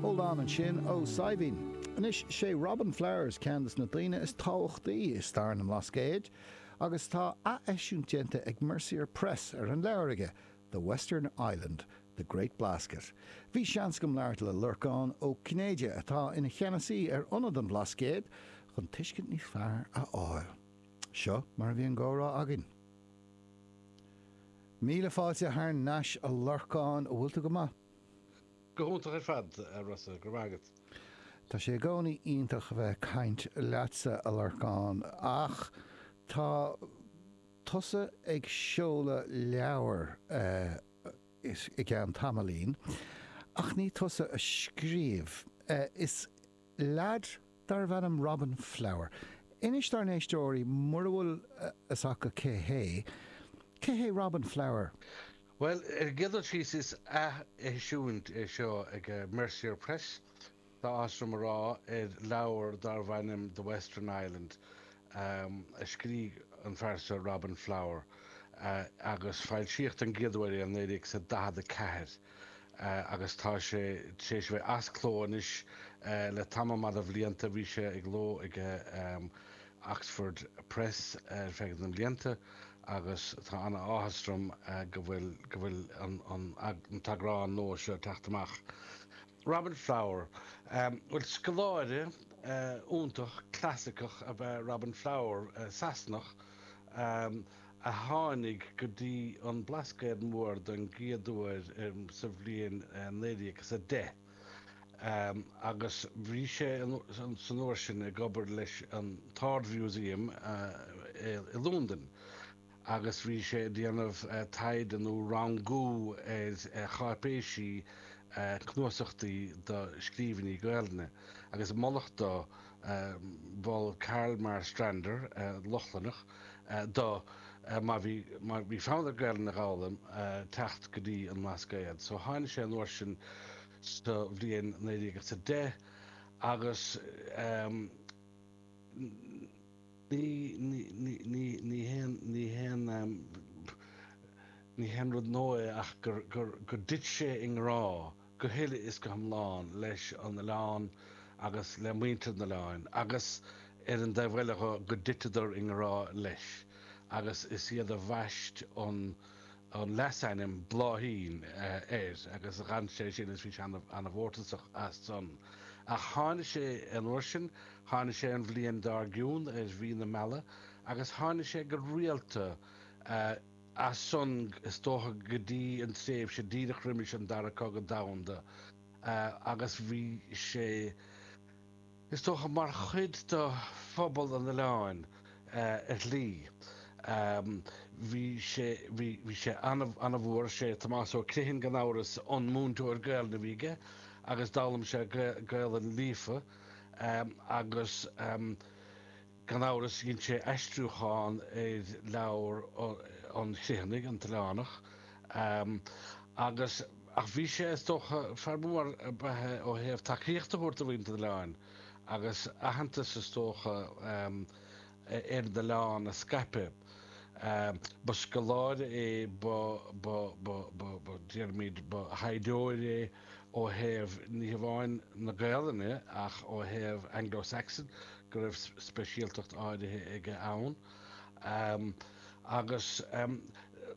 Ólann ansin ó Saidhbhín. Anois, sé Robin Flower's ceann de na daoine is tábhachtaí i stair na mBlascaod agus tá ath-eisiúint déanta ag Mercier Press ar an leabhar aige, The Western Island, The Great Blasket. Bhí seans agam labhairt le Lorcán Ó Cinnéide, atá ina cheannasaí ar Ionad an Bhlascaoid, chun tuiscint níos fearr a fháil. Seo mar a bhí an comhrá againn. Míle fáilte thar nais a Lorcáin, bhfuil tú go maith? Go hiontach ar fad, a Rossa, go raibh maith agat. Tá sé i gcónaí iontach a bheith ag caint leatsa, a Lorcáin, ach tá tusa ag seoladh leabhair i gceann tamaillín, ach ní tusa a scríobh, is leaid darbh ainm Robin Flower. Inis dár n-éisteoirí, mura bhfuil fhios acu go cé hé, cé hé Robin Flower? Bhuel, ar an gcéad dul síos, is atheisiúint é seo ag Mercier Press, tá fhios agam a rá, ar leabhar darbh ainm The Western Island, a scrígh an fear seo, Robin Flower, agus foilsíodh don gcéad uair é i 1944. agus tá sé tar éis a bheith as cló anois le tamall maith de bhlianta. Bhí sé i gcló ag Oxford Press ar feadh na mblianta agus tá an-áthas orm go bhfui- go bhfuil an t-eagrán nua seo ag teacht amach. Robin Flower, Bhuel, scoláire iontach clasaiceach ab ea Robin Flower, Sasanach a tháinig go dtí an mBlascaod Mór don gcéad uair sa bhliain 1910, agus bhí sé san uair sin ag obair leis an tArd-Mhúsaem i Londain. agus bhí sé ag déanamh taighde nó rangú ar cháipéisí cnuasachtaí de scríbhinní Gaelainne, agus moladh dó, mhol Carl Marstrander, Lochlannach, dó, má bhí má bhí fonn air Gaelainn a dh'fhoghlaim, teacht go dtí an mBlascaod. So tháinig sé an uair sin sa bhliain naoi déag is a deich, agus eh, Ní haon, ní haon rud nua é ach gur thit sé i ngrá go huile is go hiomlán leis an oileán agus le muintir an oileáin agus ar an taobh eile dhe gur thiteadar i ngrá leis agus is iad a bhaist an an leasainm 'Bláithín' air agus d'fhan sé sin agus bhí sé an-mhórtasach as san. Ach tháinig sé an uair sin, tháinig sé an bhliain dár gcionn ar mhí na meala agus tháinig sé go rialta as san is dócha go dtí an tréimhse díreach roimis an Dara Cogadh Domhanda agus bhí sé Is dócha mar chuid de phobal an oileáin ar shlí. Bhí sé an-mhór, 'sé Tomás Ó Criomhthain gan amhras an múinteoir Gaelainne a bhí aige agus d'fhoghlaim sé Gaelainn líofa agus Gan amhras dhein sé aistriúchán ar leabhar an Chriomhthanaigh, An tOileánach, agus, ach bhí sé, is dócha, fear mór ab ea é ó thaobh tacaíocht a thabhairt do mhuintir an oileáin agus aitheantas, is dócha, ar an oileán a scaipeadh. Ba scoláire é, ba, déarfaimid, ba thaighdeoir é. ó thaobh ní hamháin na Gaelainne ach ó thaobh Anglo-Saxon go raibh speisialtacht áirithe aige ann agus.